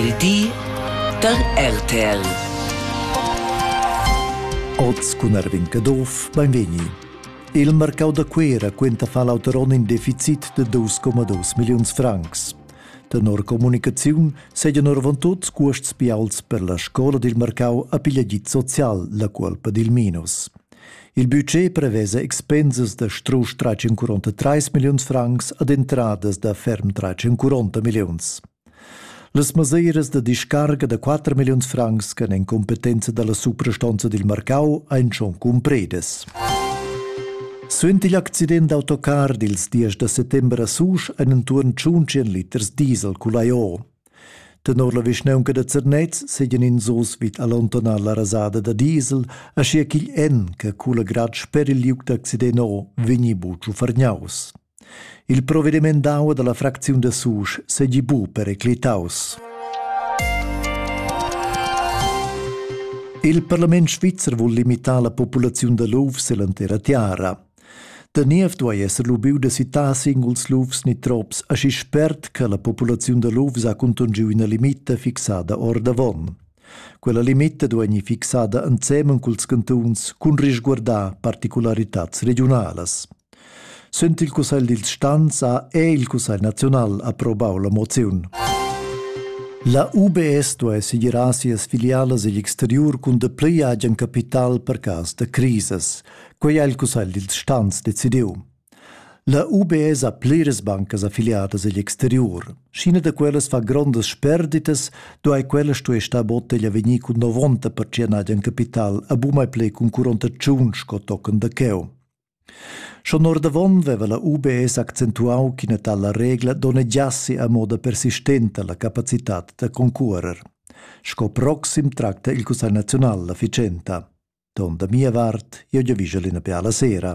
Il di da RTL. Oz cun Erwin Caduff, benvegni. Il marcau da Cuera quenta fa l'auter onn in deficit de 2,2 milliuns francs. Tenor comunicaziun segan orvantut cuosts bials per la scola dil marcau a pigliagit social, la cuolpa dil minus. Il budget prevesa expensas da strusch 343 milliuns francs ad entradas da ferm 340 milliuns. Las mesiras da discarga da 4 milliuns francs che en competenza dalla suprastonza dil marcau ein schon cumpredes. Suenter l'accident d'autocar dils 10 da settember a Susch ein entuorn 100 liters diesel culaiò. Tenor la vischnaunca da Zernez seien ins oz vid allontanar la rasada da diesel, aschia ch'igl en che cula grad sper il liug d'accident vegni buca fargnaus. Il provediment d'aua dalla fracziun da Susch seigi buca periclitaus. Il parlament svizzer vul limitar la populaziun da lufs ell'entera tiara. Da niev duai esser lubiu da citar singuls lufs ni trops aschi spert che la populaziun da lufs ha contungiu ina limita fixada ordavon. Quella limita duai fixada ensemen culs cantuns cun risguardar particularitats regiunalas. Sün il Cussegl dils stans ha è il Cussegl naziunal approbau la moziun. La UBS duai segirar sias filialas igl exteriur cun dapli agen capital per cas da crisis. Quei ha il Cussegl dils stans decidiu. La UBS ha pliras bancas affiliadas egl exteriur. Scina da quellas fa grondas sperditas, duai quella stuer star botteglia vegnir cun 90% agen capital a bu mai plei cun 48 sco token da cheu. Schon ordavon veva la UBS accentuau ch'ina tala regla donnegiassi a moda persistenta la capacitat da concuorer. Sco proxim tracta il Cussegl nazional la ficenta. Ton da mia vart, io giavischel ina piala sera.